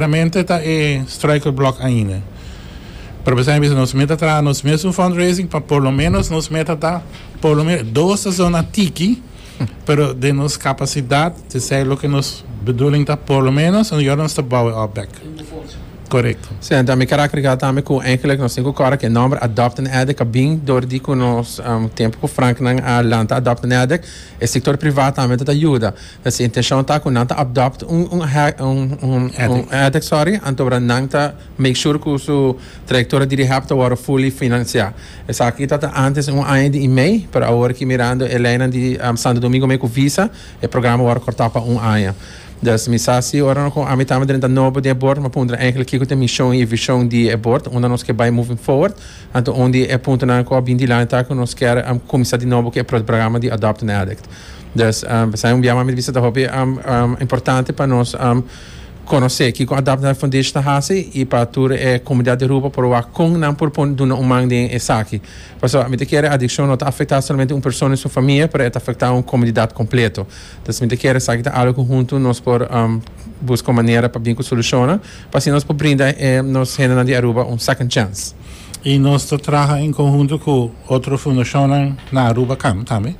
Primeramente ta e Striker Blok ainda. Pero besai mi bisa nos meta traha nos mes un fundraising pa por lo menos nos meta ta por lo menos dos ta zona tiki pero den nos capacidad tizay loke nos bedoeling ta por lo menos un yornan nos ta bouw e opbek. Correcto. Sí, enton mi kera agregá tambe ku eigenlik nos tin ku kòrda ku e nòmber Adopt an Addict a bin dor di ku nos tempu ku Franknan a lanta Adopt an Addict e sektor privat tambe ta ta yuda. E su intenshon ta ku nan ta adopt un un un un addict sorry antobra nan ta make sure ku su trayektoria di rehab ta wòrdu fully finansiá. Esaki ta ta ántes un aña di i mei pero awor aki mirando e leinan di Santo Domingo mei ku visa e programa a wòrdu kòrtá pa un aña. Dus mi sa si ora no kon ami tambe drenta nobo den e bord mi a puntra èinklik kiko ta e mishon i e vishon di e bord unda nos ke bai moving forward. Anto un di e puntonan ku a bin dilanti ta ku nos kèr kuminsá di nobo ku e programa di adopt an addict. Dus esaki un biaha mami ta bisa ta hopi importante pa nos konosé kiko Adapt Health Foundation ta hasi i pa tur e komunidat di Aruba por wak kon nan por pone duna un man den esaki. Pasobra mi ta kere adikshon no ta afektá solamente un persona i su famia pero e ta afektá un komunidat kompleto. Dus mi ta kere esaki ta algu ku huntu nos por buska un manera pa bin ku solushonnan pa asina nos por brinda e nos hendenan di Aruba un second chance. y nos ta traha en conhunto cu otro fundacionnan na Aruba Kamp tambe.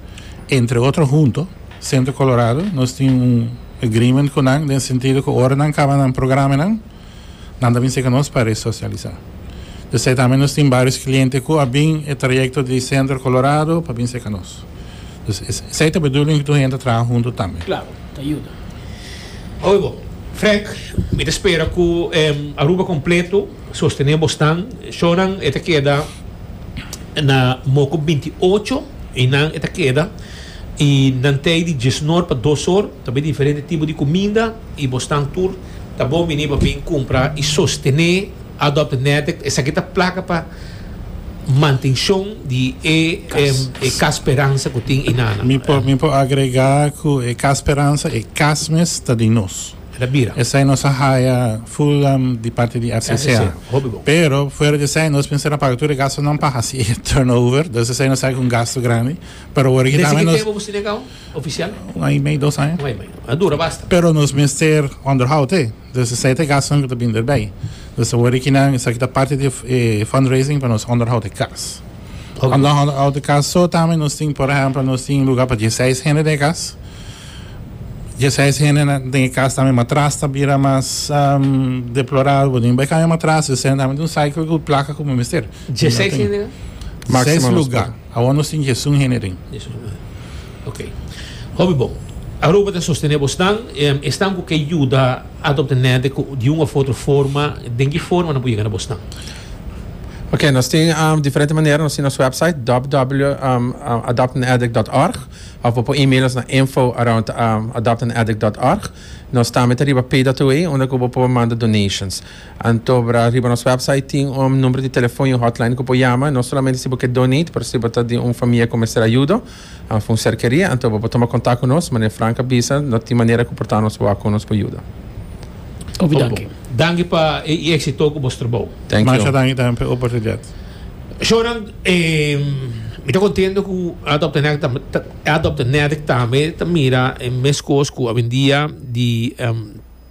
Entre otro hunto, Centro Colorado, nos tin un agreement cu nan den sentido cu ora nan caba nan programenan, nan ta bin cerca nos pa resocialisa. P'esey tambe nos tin varios cliente cu a bin e trayecto di Centro Colorado pa bin cerca nos. Dus es, esey ta bedoeling tur hende ta traha hunto tambe. Claro, ta yuda. Oye bo, Frank, mi ta spera cu Aruba completo. Sostené bosnan, shownan e ta keda na moku binti ocho i nan e ta keda i nan tei di diesnor pa dosor ta bay diferente tipo di kuminda i bosnan tur ta bon bini pa bin kumpra i sostené Adopt Nederk esaki ta plaka pa mantenshon di e Cas Speransa ku tin i nana. Mi por agregá ku e Cas Speransa e cas mes ta di nos. ta bira. Esai nos a haya full di parte di RCCA. Pero fuera di esai nos pensa na paga tur e gastunan pa haci e turnover. Entonces esai nos a ha'i ku un gastu grandi. Pero awor aki tambe nos. Desi ki tempu bo sina e kau oficial? Un aña i mei, dos aña. Un aña i mei. A dura basta. Pero nos mester onderhoud te. Entonces esai ta e gastunan ku ta bin derbei. Entonces awor aki nan esaki ta parte di e fundraising pa nos onderhoud e kas. Okay. Anda hond out de cas so tamen nos tin por ejemplo nos tin lugar pa 16 hende de cas. 16 hende na den cas tamen matras ta bira mas um, deplorado bo nin bai cambia matras de sen tamen un cycle cu placa cu mester. 16 hende na? Maximum 6 lugar. Awon nos tin 16 hende den. Jesus man. Ok. Hopi bon. Aruba ta sostener bo stan, em, e stan ku ke yuda adopta nede ku di un of otro forma, den ki forma na pudi gana bo stan. Oké, nos tin um, diferente manera, nos tin nos website www.adoptanaddict.org um, of bo por e-mail nos na info around um, adoptanaddict.org. Nos tambe ta riba pay that way, unda ku bo por manda donations. Antobra riba nos website tin un um, numero di telefon y un hotline ku bo por yama, no solamente si bo ke donate, pero si bo ta di un famia ku mester ayudo. Anf un cerkeria anto bo por toma contact cu nos, mane Frank a bisa no tin manera cu por ta nos wak con nos por yuda. Opi danki. Danki pa e exito cu bo strobou. Thank you. Masha danki tambe pa e oportunidad. Shownan mi ta contento cu Adopt a Natick tambe ta mira e mes cos cu awendia di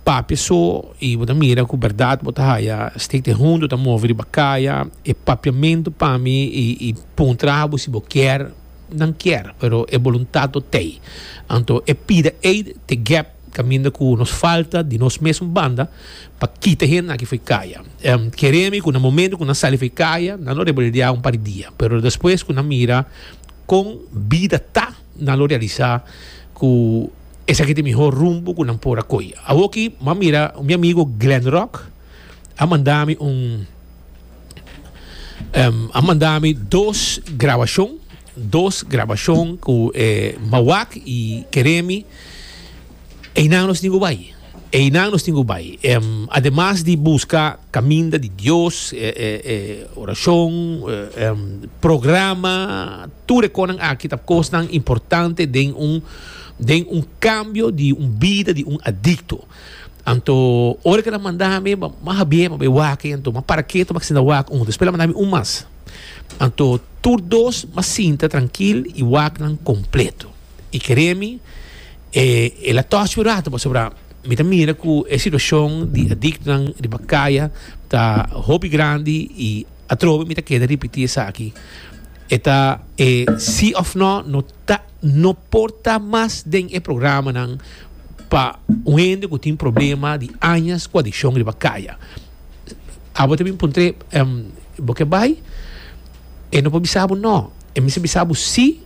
Papia so y bo ta mira cu berdad bo ta haya Stick de Hondo ta move riba caya e papiamento pa mi y pon traha bo si bo kier nan kier pero e boluntad lo tey anto e pida ey te gep caminda cu nos falta di nos mesun banda pa kita hende aki foey caya kere mi cu na momento cu nan sali foey caya nan lo rebeldia un par di dia pero despues cu nan mira con bida ta nan lo realisa cu Esaki ta e mihó rumbo ku nan por a koi. Awor ki bo a mira, mi amigo Glen Rock a manda mi un, a manda mi dos grabashon, dos grabashon ku e Mawak i Keremi. Einan nos tin ku bai. Einan nos tin cu bay. Ademas di busca caminda di Dios, oracion, programa, tur e conan aki ta cosnan importante den un, den un cambio di un bida di un adicto. Anto, ora cu nan manda ami, m'a habiba bay wak, anto m'a para ketu, m'a sinta wak un. Despues el a manda ami un mas. Anto, tur dos m'a sinta trankil i wak nan completo. i kere mi, e el a tòs yu ratu pasobra mi ta mira ku e situashon di adiktonan riba kaya ta hopi grandi i atrobe mi ta keda ripití esaki. E ta e sí òf nò no ta no por ta mas den e programanan pa un hende ku tin problema di añas ku adikshon riba kaya. Abo ta bin puntr'é, Bo ke bai? E no por bisa bo nò, e mester bisa bo sí.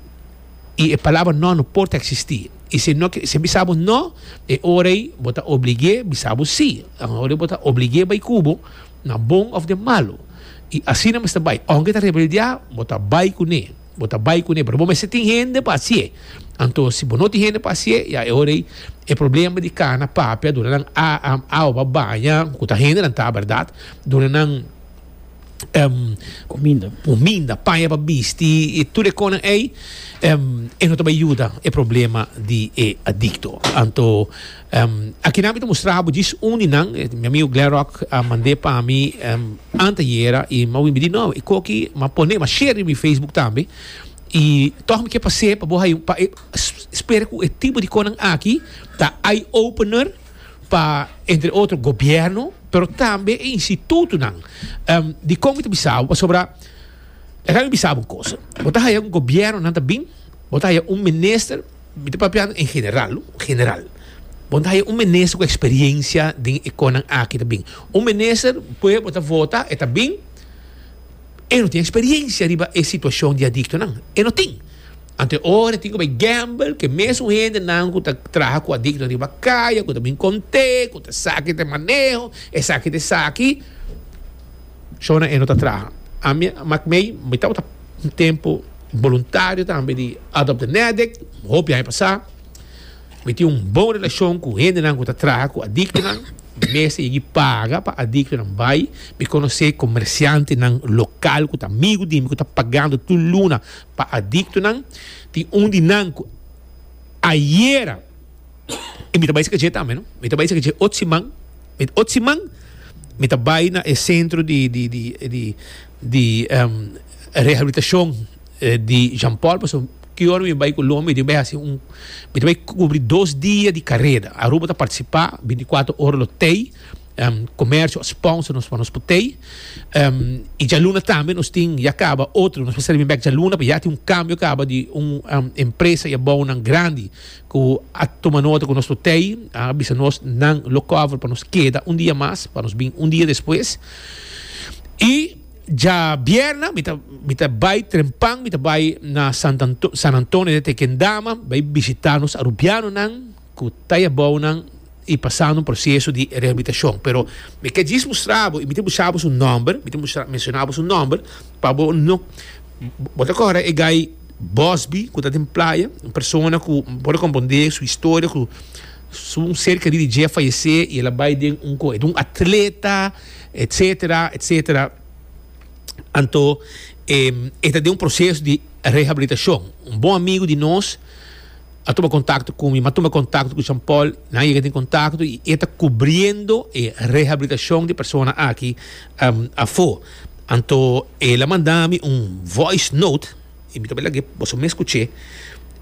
y e palabra no no por ta existi y si no si bisa bo no e ora ey bo ta obligue bisa bo si un ora bo ta obligue bay cubo na bon of den malo y asina mester bay aunke ta rebeldea bo ta bay cu ne bo ta bay cu ne pero bo mester tin hende pa haci'e anto si bo no tin hende pa haci'e ya e ora ey e problema di cana papia dura nan a a a oba baña cu ta hendenan ta verdad dura nan Huminda. Huminda, paña pa bisti i tur e konan ei, e no ta bai yuda e problema di e adikto. Anto, akinan mi ta mustra bo djis un di nan, mi amigu Gleroc a mand'é pa mi antayera i mi a win bidi, no, e kos aki mi a pon'é, mi a share riba mi facebook tambe i tòg mi ke pas'é pa bo haña un, pa e spera ku e tipo di konan aki ta eye-opener. pa entre otro gobierno pero tambe e institutonan um di kon mi ta bisa bo pasobra esaki mi bisa bo un cosa bo ta haya un gobiernonan ta bin bo ta haya un minister mi ta papiando en general no general bo ta haya un minister ku experiencia den e konan aki ta bin un minister pue bo ta vota e ta bin. E no tin experiencia riba e situacion di adictonan. E no tin. Anto e ora e tin cu bay gamble cu e mes un hendenan cu ta traha cu adictonan riba caya, cu ta bin conte, cu ta saki ta e maneho, esaki ta esaki. Shona e no ta traha. Ami a mak mey, mi tabata un tempo voluntario tambe di Adopt the Ne'Addict, hopi aña pasa. Mi tin un bon relashon ku hendenan ku ta traha ku adiktonan. Mi mester yegi paga pa adiktonan bai. Mi konosé komersiantenan lokal ku ta amigu di mi ku ta pagando tur luna pa adiktonan. Tin un di nan ku ayera i mi ta bai saka dje tambe. Mi ta bai saka dje ot siman. Ot siman mi ta bai na e sentro di di di rehabilitashon di Jean Paul pasobra. Ki ora mi bai ku Loma mi tin bai hasi un mi tin bai kubri dos dia di kareda Aruba ta partisipa binti kuater ora lo tei komersio a sponsor nos pa nos por tei i djaluna tambe nos tin ya kaba otro nos por sali bin bek djaluna pasobra ya tin un kambio kaba di un empresa i abounan grandi ku a tuma nota ku nos por tei a bisa nos nan lo cover pa nos keda un dia mas pa nos bin un dia despues i. Djabierna mi ta mi ta bai trempan mi ta bai na Sant Anto San Antonio de Tequendama bai bishita nos arubianonan cu ta yabounan y pasando un proceso di rehabilitacion pero mi ke djis mustrabo y mi tin buscabo su nomber mi tin bustra mencionabo su nomber pa bo no bo ta cohora e guy Bosby cu ta den playa un persona cu bo por a comprende su historia cu su un ser querido di dje a fayece y el a bai den un cu e ta un atleta. etc. Etc. Anto e ta den un proceso di rehabilitacion. Un bon amigo di nos a tuma contacto cu mi, mi a tuma contacto cu Jean Paul, nan a yega den contacto y e ta cubriendo e rehabilitacion di persona aki afo. Anto e la manda mi un voice note. Y mi ta bai lag'é, boso mes cuch'é,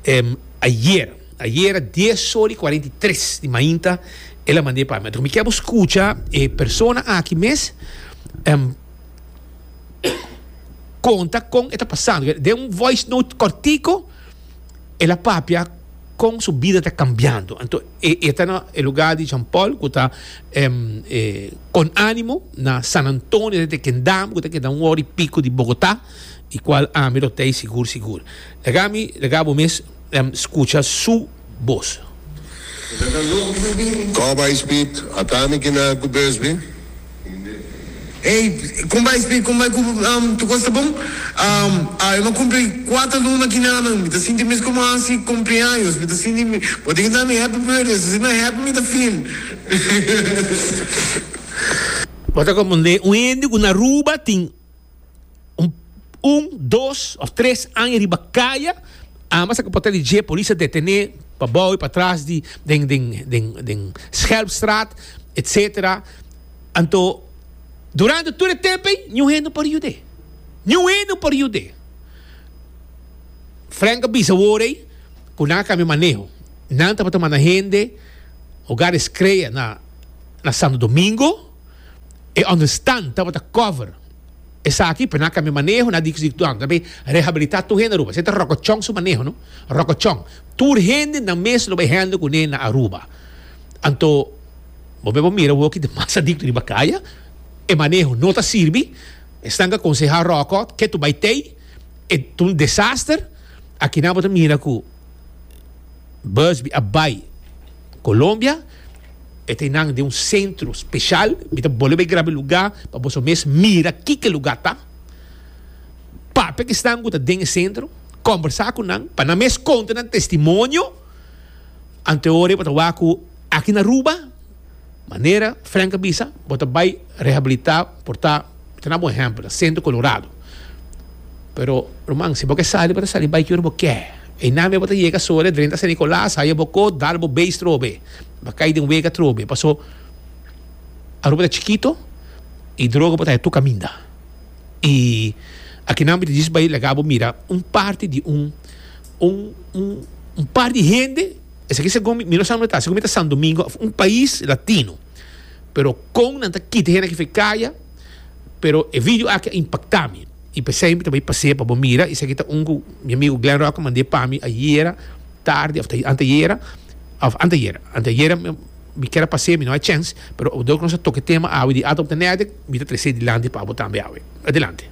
em, ayer, ayer era dies ora y cuarenta y tres di mainta, el a mand'é pa mi. Anto mi kier bo scucha e persona aki mes, em, conta con e ta pasando. Den un voice note cortico, el a papia con su bida ta cambiando. Anto e, e ta na e lugar di Jean Paul, cu ta, em, eh, Con Animo, na San Antonio, dente Kendama, cu ta keda un ora y pico di Bogota. y cual ami lo tey sigur sigur. Lagá mi, lagá bo mes scucha su bos. Cor bay speed ata mi ki na cu bus bi. Ey con bay speed con bay cu tu cos ta bon awe ma cumpli cuater luna ki na nan mi ta sinti mes como haci cumpleaños mi ta sinti mi bo tin kintami happy birthday so si na happy mi ta feel Bo ta compronde un hende cu na Aruba tin. un, dos of tres aña riba kaya, ambas a kaporta di dje polis a detené pa bou i pa tras di den den den den Schelpstraat etsetera. Anto durante tur e tempo ei niun hende por yud'é. Niun hende por yud'é. Frank a bisa wor ei ku nan a kambia maneho. Nan tabata manda hende Hogares Crea na Santo Domingo. E understand tabata cover. Esaki p'e nan a cambia maneho, nan a digi su nan tabata rehabilita tur hende Aruba. Se ta rocochon su maneho no. Rocochon. Tur hende nan mes lo bay handle cune na Aruba. Anto bo me por mira woki ta mas adicto riba caya. E maneho no ta sirbi. Esnan ke aconseha Roco ke tu bay tey. E ta un desaster. Aki nan bo ta mira cu. Busby a bai Colombia e ta nan den un centro special mi ta bolbe bai graba e luga pa boso mes mira kiko e luga ta papia ki esnan ku ta den e centro combersa ku nan pa nan mes konta nan testimonio anteori bo ta wak ku aki na Aruba. Manera Frank a bisa, bo ta bai rehabilitá por ta, mi ta na bo un ehèmpel, na Centro Colorado. Pero, ruman, si bo ke sali, bo ta sali bai ki ora bo ke. Einan mei bo ta yega so, dren ta San Nicolas, haya bo ko, dal bo beis trobe, bo kai den wega trobe. Paso, Aruba ta chikito i droga por ta haya tur kaminda. I akinan mi ta djis bai laga bo mira un parti di un, un, un, un par di hende. Esaki segun mi, mi no sa unda ta, segun mi ta San Domingo, un pais latino, pero kon nan ta kita hende aki for e kaya, pero e video aki a impakta mi, i p'esei mi ta bai pasea pa bo mira, esaki ta un ku mi amigu Glenn Rock a mand'é pa mi ayera tardi òf ta anteayera, òf anteayera, anteayera mi kier a pasea mi no hay chèns, pero obrador ku nos a toka e tema awe di Atom Tenèdek, mi ta tres'é dilanti pa bo tambe awe. Adelante.